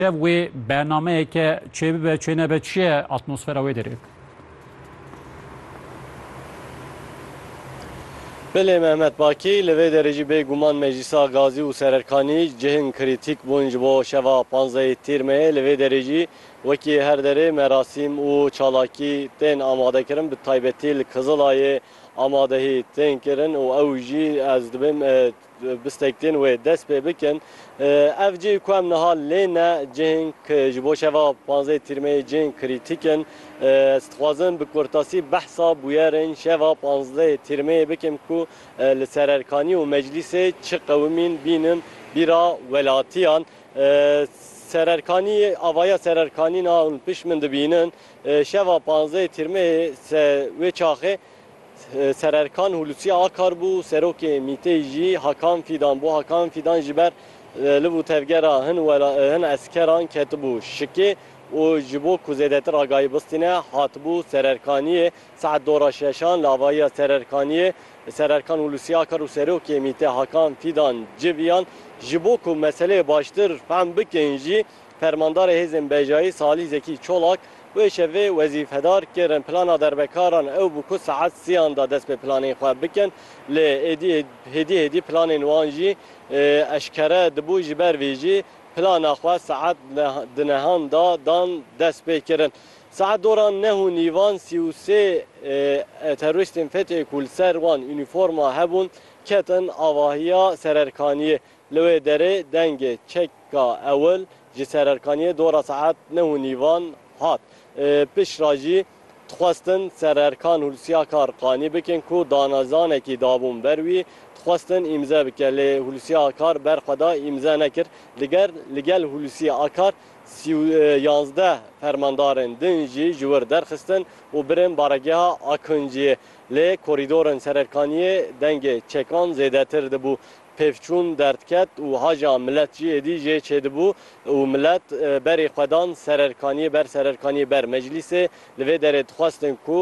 Ev wê bernameyeke çê bibe çê nebe çi ye atmosfera wê derê? Bilê Mehmet Bakî, li vê derê jî bê guman Meclîsa Gazî û Sererkanî cihên krîtîk bûn ji bo şeva panzdehê Tîrmeyê. Li vê derê jî wekî her derê merasîm û çalakî tên amadekirin. Bi taybetî li Kizilayê amadehî tên kirin û ew jî ez dibim Bistektên wê dest pê bikin. Ev cih ku em niha lê ne, cihên ku ji bo şeva panzdeh tîrmeyê cihên krîtîk in. Ez dixwazim bi kurtasî behsa bûyerên şeva panzdeh tîrmeyê bikim ku li sererkanî û meclîsê çi qewimîn bînin bîra welatiyan. Sererkanî, avaya sererkanî niha hûn pişt min dibînin. Şeva panzdeh tîrmeyê wê çaxê. Ser Erkan Hulusi Akar bû serokê MቘT'ê jî Hakan Fîdan bû. Hakan Fîdan ji ber li bo tevgera hin hin eskeran ketibû şikê û ji bo ku zêdetir agahî bistîne hatibû Ser Erkaniyê. Saet dora şeşan li avahiya Ser Erkaniyê Ser Erkan Hulusi Akar û serokê MۊT'ê Hakan Fîdan civiyan. Ji bo ku meseleyê baştir fehm bikin jî, Fermandarê Hêzên Bejayî Salîh Zekî Çolak, wê şevê wezîfedar kirin plana derbekaran ew bû ku saet sêyan da dest bi planên xwe bikin, lê êdî hêdî hêdî planên wan jî eşkere dibû ji ber vê jî plana xwe saet di nehan da dan dest pê kirin. Saet dora neh û nîvan sî û sê terorîstên FETÖ'yê ku li ser wan unîforma hebûn ketin avahiya sererkaniyê Li wê derê dengê çeka ewil ji sererkaniyê dora saet neh û nîvan hat. Piştre jî dixwestin sererkan Hulusyakar qanî bikin ku danezanekî dabûn ber wî, dixwestin îmze bike lê Hulusyakar ber xwe da îmze nekir. Li ger li gel Hulusyakar sî û yazdeh fermandarên din jî ji wir derxistin û birin baregeha Akinciyê. Lê korîdorên sererkaniyê dengê çekan zêdetir dibû. Pêvçûn derdket û haja milet jî êdî jê çêdibû û milet berê xwe dan sererkaniyê ber sererkaniyê ber. Meclîsê li vê derê dixwestin ku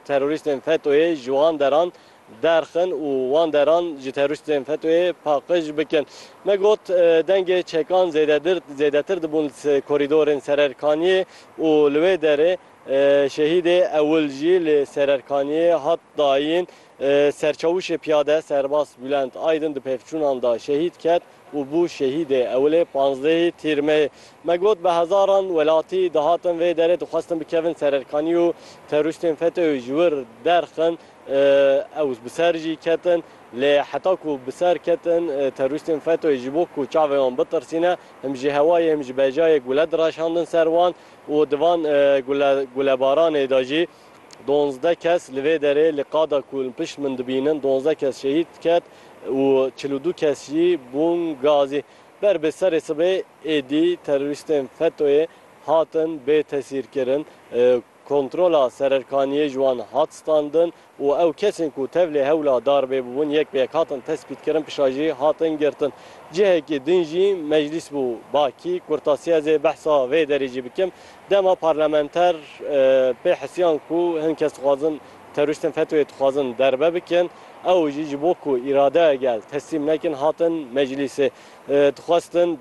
terorîstên FETO'yê ji wan deran derxin û wan deran ji terorîstên FETO'yê paqij bikin. Me got dengê çekan zêdedir zêdetir dibûn li korîdorên sererkaniyê û li wê derê şehîdê ewil jî li sererkaniyê hat dayîn. Serçavuşê Piyade Serbas Bulent Aydin di pevçûnan de şehîd ket û bû şehîdê ewilê panzdehê tîr me. Me got bi hezaran welatî dihatin vê derê dixwestin bikevin ser erkanî û terorîstên FETÖ'yê ji wir derxin ew bi ser jî ketin lê heta ku bi ser ketin terorîstên FETÖ'yê ji bo ku çavê wan bitirsîne him ji hewayê him ji bejayê gule direşandin ser wan û di van gulebaranê de jî Donzdeh kes li vê derê li qada ku li pişt min dibînin donzdeh kes şehîd ket û çil û du kes jî bûn gazî. Ber bi serê sibê êdî terorîstên FETO'yê hatin bêtesîrkirin, kontrola sererkaniyê ji wan hat standin û ew kesên ku tevlê hewla darbê bûbûn yek bi yek hatin tespîtkirin pişa jî hatin girtin. Cihekî din jî meclîs bû. Ba kî kurtasiyazê behsa vê derê jî bikim. Dema parlamenter pê hisiyan ku hin kes dixwazin terorîstên FETÖ'yê dixwazin derbe bikin, ew jî ji bo ku îradeya gel teslîm nekin hatin meclîsê. Dixwestin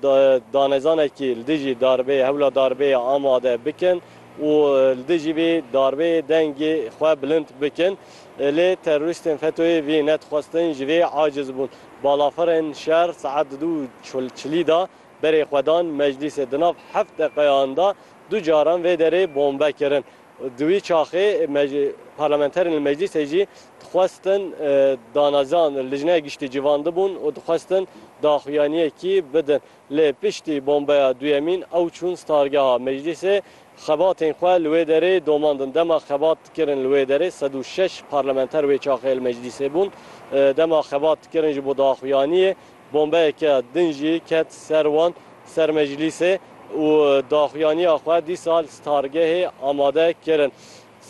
danezanekî li dijî darbeyê, hewla darbeyê amade bikin û li dijî vê darbeyê dengê xwe bilind bikin. Lê terorîstên FETÖ'yê vê nedixwestin, ji vê aciz bûn. Balafirên şer saet di du û çilî de Berê xwe dan meclîsê. Di nav heft deqeyan de du caran vê derê bombe kirin. Di wî çaxê parlamenterên li meclîsê jî dixwestin danaziyan Lijneya Giştî civandibûn û dixwestin daxuyaniyekî bidin. Lê piştî bombeya duyemîn ew çûn stargeha meclîsê. Xebatên xwe li wê derê domandin. Dema xebat dikirin li wê derê sed û şeş parlamenter wê çaxê li meclîsê bûn. Dema xebat dikirin ji bo daxuyaniyê. Bombeyeke din jî ket ser wan ser meclîsê û daxuyaniya xwe dîsa li stargehê amade kirin.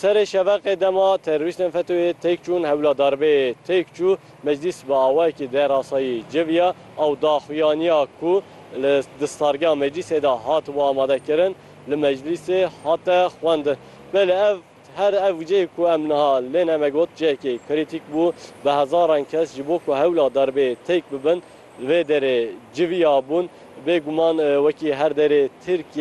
Serê şeveqê dema terorîstên FETÖ'yê têk çûn hewla darbeyê têk çû, meclîs bi awayekî derasayî civiya ew daxuyaniya ku li di stargeha meclîsê de hatibû amade kirin li meclîsê hate xwendin. Belê ev Her ev cih ku em niha lê ne me got cihekî krîtîk bû. Bi hezaran kes ji bo ku hewla derbê têk bibin li vê derê civiyabûn. Bêguman wekî her derê Tirkiyeyê,